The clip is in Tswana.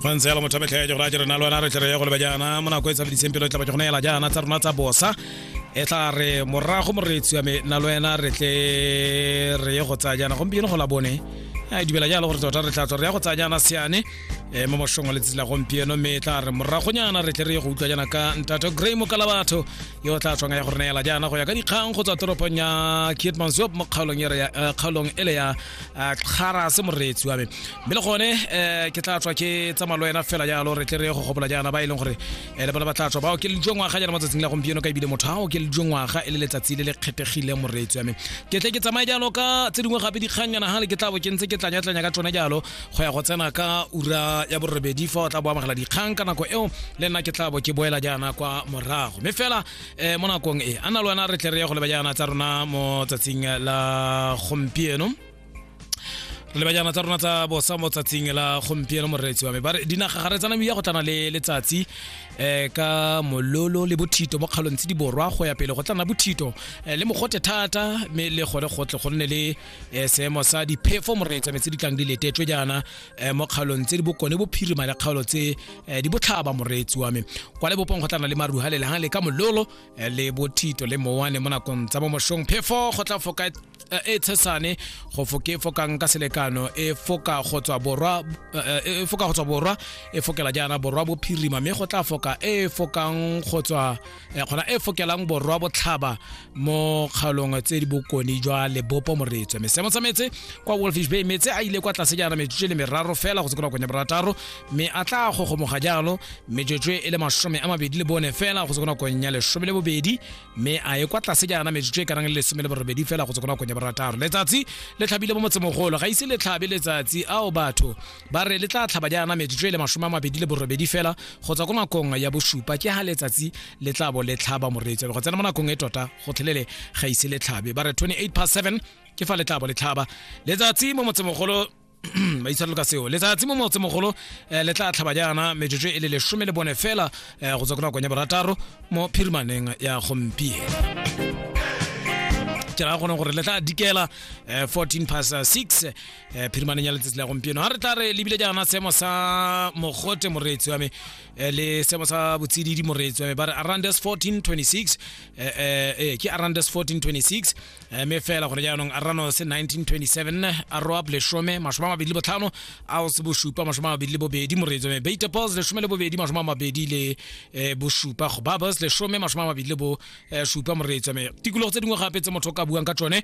go ntse yalo motho metlha ya jogora jere na lwana re tlere ya go leba jaana mo nako e tshabediseng pelo e tla ba jogona ela jaana tsa rona tsa bosa e tla re morago moreetsi wa me na le wena re tle re ye go tsaya jaana gompieno go la bone a dumela jalo gore tota re tla tswa re ya go tsaya jaana seane um mo mošong wa letsatsi la gompieno mme e tla re moragonyana re tle re ye go utlwa jaana ka ntate grey mokala batho yo o tla tswang ya go re neela jaana go ya ka dikgang go tswa toropong ya kietmansop mo kgaolong ele ya uh, kgara se moreetsi wa me mme le gone um ke tla tswa ke tsamaya le wena fela jalo re tle re go gopola jaana ba e leng gore um le bona ba tla tswa bao ke le jo ngwaga jalo matsatsing la gompieno ka ebile motho ao ke le jo ngwaga e le letsatsi le le kgethegile moreetsi wa me ke tle ke tsamaye jalo ka tse dingwe gape dikgannyana ga le ke tla bo ke ntse ke tlanyatlanya ka tsone jalo go ya go tsena ka ura ya borobedi fa o tla bo amogela dikgang ka nako eo le nna ke tla bo ke boela jaana kwa morago mme fela um mo nakong e a na le wena re tle re ye go leba jaana tsa rona mo tsatsing la gompieno re leba jaana tsa rona tsa bosa mo tsatsing la gompieno moreetsi wa me bare dinaga ga re tsana ya go tlana le letsatsi um ka mololo le bothito mo kgalong tse di borwa go ya pele go tlana bothito eh, le mogote thata mme le gone gotle go nne le eh, seemo sa diphefo moreetsi wa me tse di tlang di letetswe jaana um mo kgaolong tse di bokone bophirima le kgaolo tse um di botlhaba moreetsi wa me kwa lebopong go tlana le maruha le lehang le ka mololo eh, le bothito le mowane mo nakong tsa bomošong phefo go tla foka eh, e tshesane go foke e fokang ka selekano e foka go tswa borwa e foka go tswa borwa e fokela jaana borwa bophirima mme go tla foka e fokang go tswa gona e fokelang borwa botlhaba mo kgaolong tse di bokone jwa lebopo moretswe mesemo tsa metse kwa wolfish bay metse a ile kwa tlase jaana metsotso le meraro fela go se kona kone borataro mme a tla gogomoga jalo metsotso e le masome a mabedi le bone fela go se kona kone ya lesome le bobedi mme a ye kwa tlase jaana metsotso e ka nang le lesome le borobedi fela go se kona kone borataro letsatsi le tlhabile mo motsemogolo ga ise le tlhabe letsatsi ao batho ba re le tla tlhaba jaana metsotso e le masome a mabedi le borobedi fela go tswa ko nakong ya bosupa ke ga letsatsi le tla bo le tlhaba moreetsi go tsena mo nakong e tota go tlhelele ga ise le tlhabe ba re 28 past 7 ke fa le tla bo le tlhaba letsatsi mo motsemogolo ba itshwarelo ka seo letsatsi mo motsemogolo eh, le tla tlhaba jaana metsotso e le lesome le bone fela eh, go tswa ko nakong ya borataro mo phirimaneng ya gompieno ke raya gone gore le tla dikela eh, 14 past 6 eh phirimane ya letsatsi la gompieno ga re tla re lebile jaana seemo sa mogote moreetsi wa me eh, le seemo sa botsididi moreetsi wa me ba re arandes 1426 eh, eh, eh, ke arandes 1426 eh, me fela gore jaanong arano se 1927 aroab leshome masome a mabedi le botlhano ao se bosupa masome a mabedi le bobedi moreetsi wa me beitepos leshome le bobedi masome a mabedi le eh, bosupa gobabos leshome masome a mabedi le bo eh, supa moreetsi wa me tikologo tse dingwe gape tse motho o ka buang ka tsone